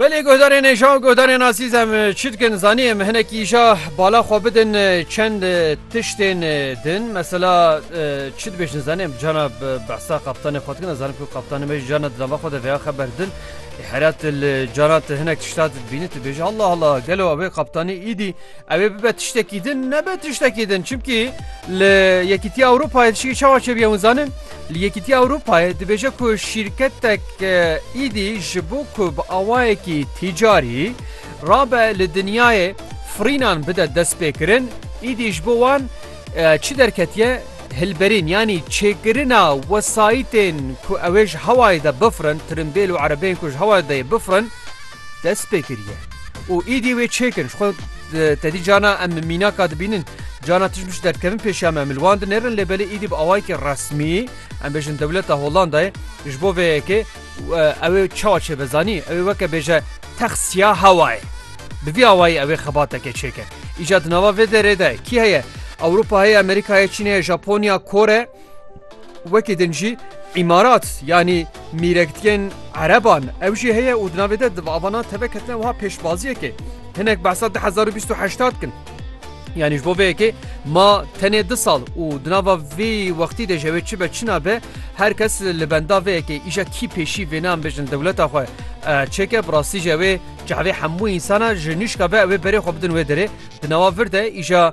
Belê guhdarên êja û guhdarên azîz em çi dikin zanî em hinekî îja bala xwe bidin çend tiştên din mesela çi dibêjin zanî em cana behsa qaptanê xwe dikin zanim ku qaptanê me cana dilava xwe de veya xeber din herat li cana te hinek tişta dibînî tu bêjî hela hela gelo ew ê qaptanî îdî Ew ê bibe tiştekî din nebe tiştekî din çimkî li Yekîtiya Ewropayê dişikî çawa çêbiye hûn zanin li Yekîtiya Ewropayê dibêje ku şîrketek êdî ji bo ku bi awayekî tîcarî rabe li dinyayê firînan bide destpêkirin êdî ji bo wan çi derketiye hilberîn yanî çêkirina wesayîtên ku ew ê ji hewayê de bifirin tirimbêl û erebeyên ku ji hewayê de yê bifirin dest pê kiriye û êdî wê çêkir ji xwe tedî cana em mînaka dibînin cana tişt mij derkevin pêşiya me min wan di nêrin lê belê êdî bi awayekî resmî em bêjin dewleta Hollandayê ji bo vê yekê ew ê çawa çê be zanî ew ê weke bêje tex siya hewayê bi vî awayî ew ê xebateke çêke îca di nava vê derê de kî heye Ewropa heye Amerîka heye Çîn heye Japonya Kore Wekî din jî îmarat yanî mîrekdiyên ereban ew jî heye û di navê de di avana teve ketine wiha pêşbaziyekê hinek behsa du hezar û bîst û heştad dikin. Yanî ji bo vê yekê ma tenê du sal û di nava vî wextî de jewê çi be çi nabe her kes li benda vê yekê îja kî pêşî vê nan bijin dewleta xwe çêke bi rastî jewê çavê hemû însana ji nîşka be ew ê berê xwe bidin wê derê di nawa vir de îja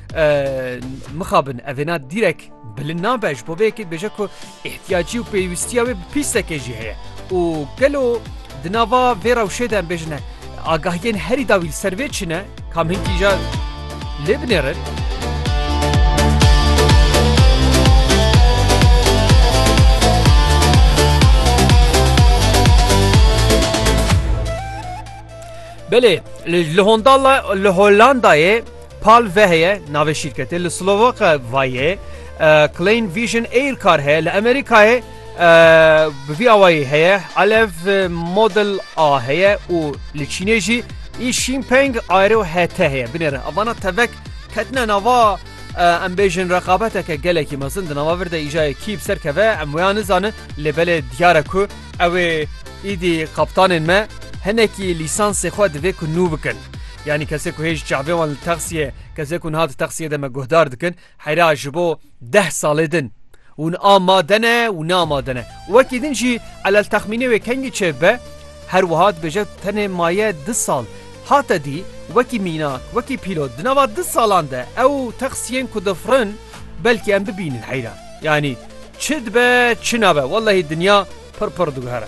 mixabin evêna dîrek bilin nabe ji bo vêyekê dibêje ku ihtiyacî û pêwîstiya wê bi pîstekê jî heye û gelo di nava vê rewşê de em bêjine agahiyên herî dawî li ser vê çine kam hinkî ja lê binêrin. Belê li Hondala li Hollandayê Pal ve heye, navê şîrketê li Slovaka vayê, Klein Vision Air kar heye li Amerîkayê bi vî awayî heye, Alev Model A heye û li Çînê jî Yixingpeng Aero HT heye. Binêrin evana tevek ketine nava em bêjin reqabeteke gelekî mezin di nava vir de îjayê kî bi ser keve em wêya nizanin lê belê diyar e ku Ew ê îdî kaptanên me hinekî lîsansê xwe divê ku nû bikin. Yanî kesê ku hê ji çavê wan li texsiyê kesê ku niha di texsiyê de me guhdar dikin heyra ji bo deh salê din hûn amade ne û ne amade ne. Wekî din jî elel texmînê wê kengî çêb be her wiha dibêje tenê maye du sal. Hate dî wekî mînak wekî pîlot di nava du salan de ew texsiyên ku difirin belkî em bibînin heyra. Yanî. Çi dibe çi nabe wellehî dinya pir pir diguhere.